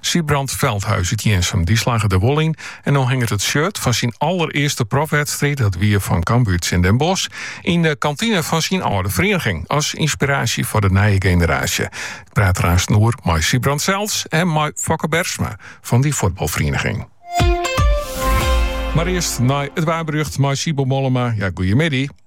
Sybrand Veldhuis út Jirnsum. Dy slagge der wol yn en no hinget it shirt fan syn allerearste profwedstriid, dat wie fan Cambuur tsjin Den Bosch, yn de kantine fan syn âlde ferieniging as ynspiraasje foar de nije generaasje. Ik praat der aansten oer mei Sybrand sels en mei Fokke Bergsma fan dy fuotbalferieniging. Mar earst nei it waarberjocht mei Sybo Mollema. Ja, goeiemiddei.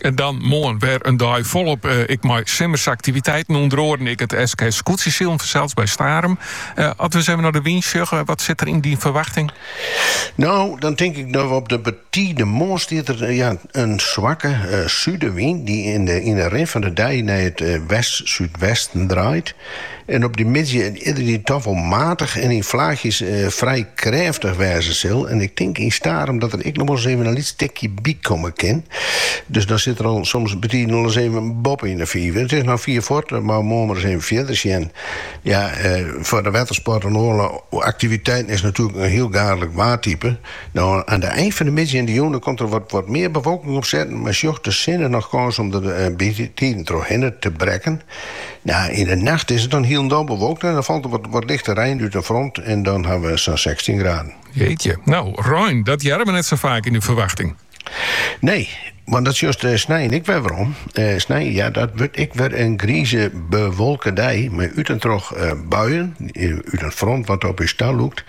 En dan moarn wer in dei folop ek mei simmersaktiviteiten, ûnder oaren ek it SKS-skûtsjesilen fansels by Starum. As we ris even nei de wyn sjogge, wat sit der yn dyn ferwachting? No, dan tink ik dat we op de betide moarn stiet der in swakke súdewyn dy't yn de rin fan de dei nei it west-súdwesten draait. en op dy middei yndie toch wol matich en yn flaachjes frij krêftich wêze sil en ik tink yn Starum dat der ek noch wolris even in lyts tikje by komme kin, dus dan sit der al soms betiden al ris even boppe yn de fiif. It is noch fiif foar, dat moatte we moarn mar ris even fierder sjen. Ja, foar de wettersport en oare aktiviteiten is natuerlik in hiel gaadlik waartype. No, aan de ein fan de middei en de jûn dan komt der wat mear bewolking opsetten, mar sjocht de sinne noch kâns om der betiden trochhinne te brekken. Ja, yn de nacht is it dan hielendal bewolkt en dan falt er wat, wat lichte rein út in front en dan ha we sa'n 16 graden. Jeetje, nou, rein, dat hearre we net sa faak yn de ferwachting. Nee, want dat sjochst eh, snein ek wer werom. Eh, snein, ja, dat wurdt ek wer in grize, bewolke dei, mei út en troch eh, buien, eh, út in front wat op ús ta lûkt.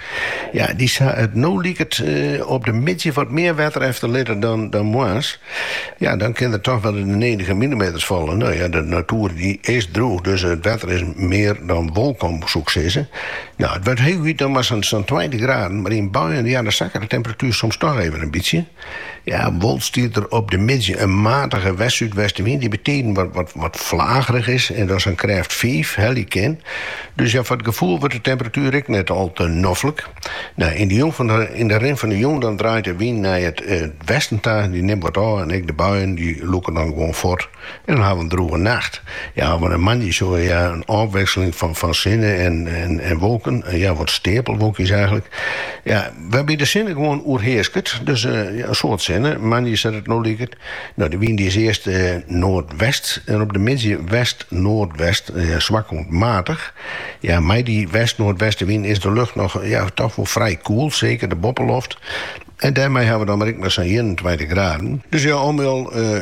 Ja, dy sa it no liket eh, op de middei wat mear wetter efter litte dan, dan moarns. Ja, dan kin der toch wol de nedige millimeters falle. No ja, de natoer dy is drûch, dus it wetter is mear dan wolkom, soe ik sizze. No, it wurdt hooguit dan mar sa'n tweintich graden, mar yn buien ja, dan sakket de temperatuer soms toch even in bytsje. Ja, wol stiet der op de middei in matige west-súdwestenwyn dy bytiden wat flagerich is en dan sa'n krêft fiif helje kin. Dus ja, foar it gefoel wurdt de temperatuer ek net al te noflik. Nou, yn de, jûn fan de, yn de rin fan de jûn dan draait de wyn nei it eh, westen ta, dy nimt wat ôf en ek de buien dy lûken dan gewoan fuort en dan hawwe we in drûge nacht. Ja, hawwe we moandei soe we ja in ôfwikseling fan fan sinne en en en wolken, ja wat steapelwolkjes eiglik, ja wêrby de sinne gewoan oerheasket, dus eh, ja in soad sinne, moandei sa't it no liket. No, de wyn dy is earst noardwest en op de middei west-noardwest, swak oant matich. Ja, mei dy west-noardwestewyn is de lucht noch ja, toch wol frij koel, seker de boppeloft. En dêrmei hawwe we dan mar ek mar sa'n ienentweintich graden. Dus ja, om jo